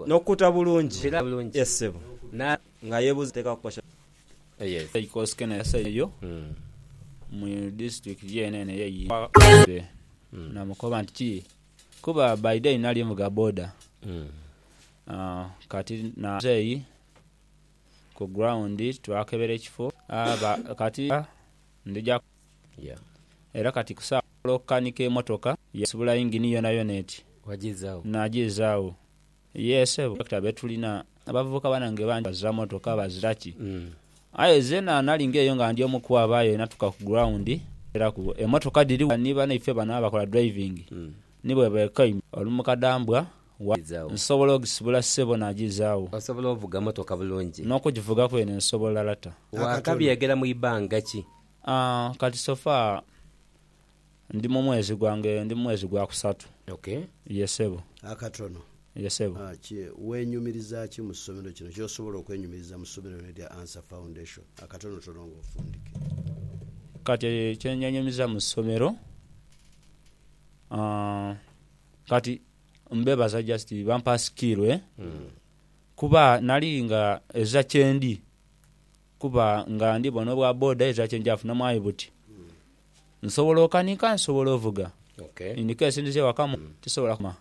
Nokukuta bulungi ye ssebo nga yebuza teka kukosha bigere. Eikosikene yasaidha eyo mu disitulikiti yeene eno eye Igombe namukoba nti kii kuba by day nali nvuga boda kati muzeeyi ku ground twakebera ekifo kati ndija. Era kati ku saagho osobola okukanika emotoka yasibula yingini yonayona eti najizaagho. Yee sebo, Dokita betulina abavubuka banange bangi bazira motoka bazira ki aye zena nali nga eyo nga ndi omu kwabo aye natuka ku ground neraku emotoka dhiri wano ni banaife bano abakola driving ni bwebekoime oli mu kadambwa wa nsobola ogisibula sebo najizaagho. Osobola ovuga motoka bulungi? Nokugivuga kwene nsobola lata. Wakabyegera mu ibanga ki? Kati sofa ndi mu mwezi gwange, ndi mu mwezi gwa kusatu. Ok. Ye ssebo. Akatono. Ye ssebo. Kye, weenyumiriza ki mu somero kino, ky'osobola okwenyumiriza mu somero lino erya Ansah Foundation? Akatonotono nga ofundike. Kati kye neenyumiriza mu somero, kati mbeebaza just bampa skill kuba nali nga ezira kyendi. Kuba nga ndi bona obwa boda ezira kye nja funamu aye buti nsobola okanika nsobola ovuga in case ndize ewaka mu tisobola kuma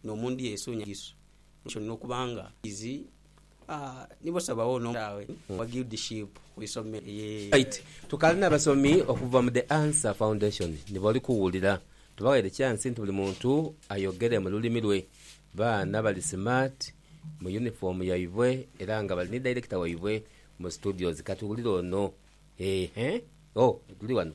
no mu ndhi esunya Yesu ekyo nina okuba nga nkizi aah nibo sabagho no mutaawe owa guildship ku isomero eeh. Right tukaali na basomi okuva mu The Answer Foundation ni bali kuwulira. Tubaghaire chance nti buli muntu ayogere mu lulimi lwe. Baana bali smart mu uniform yaibwe era nga bali ni director waibwe mu studios. Katuwulire ono eeh oh tuli wano.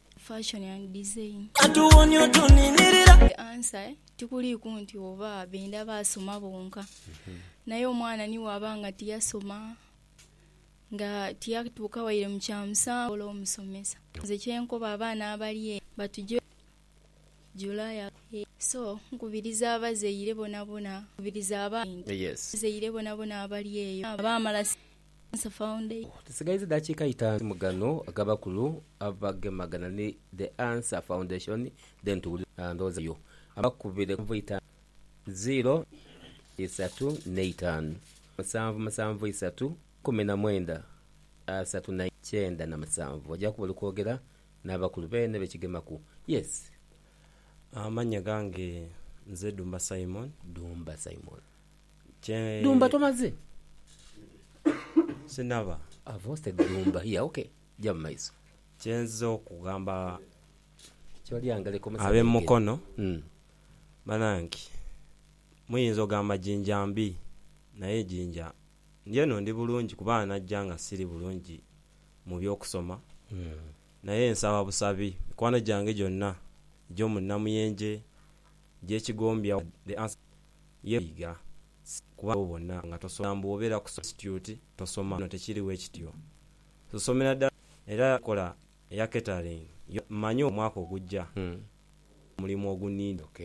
Fashion and design. The answer tikuliiku nti oba benda baasoma bonka. Naye omwana ni bwaba nga tiyasoma, nga tiyatuuka waire mu kya musanvu oba omusomesa. Nze kye nkoba abaana abali eno batuje July aghagho. So nkubiriza abazaire bonabona, nkubiriza abaana nti abazaire bonabona abali eyo baamala Cancer Foundation. Tusigaiza dakiika itaanu mu gano ag'abakulu abagemagana ni The Answer Foundation then tuwulire ndowooza yo. Abakubire ku nsanvu itaanu ziiro isatu n'eitaanu musanvu musanvu isatu ikumi na mwenda asatu na ikyenda na musanvu ojja kuba oli kwogera n'abakulu beene be kigemaku. Yes. Amannya gange nze Dumba Simon. Dumba Simon. Dumba tomaze? Sinaba. I've hosted Dumba here. Okay. Ja mu maiso. Kye nzize okugamba ab'e Mukono, banange muyinza ogamba Jinja mbi naye Jinja ndi eno ndi bulungi kuba najja nga siri bulungi mu by'okusoma naye nsaba busabi mikwano gyange gyonna egy'omu Namuyenje, Gyekigombyawo the answer ye kwiga kuba nti obona nga tosoma mbu obera ku institute tosoma no tekiri wekityo tusomera dala era enkola eya catering yo manyi omwaka ogujja omulimu ogunina ok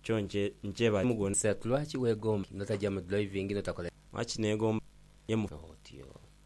kyo nkyebaza omulimu gwona. Sir lwaki wegomba notaja mu driving notakola. Lwaki negomba nje mu. Otyo.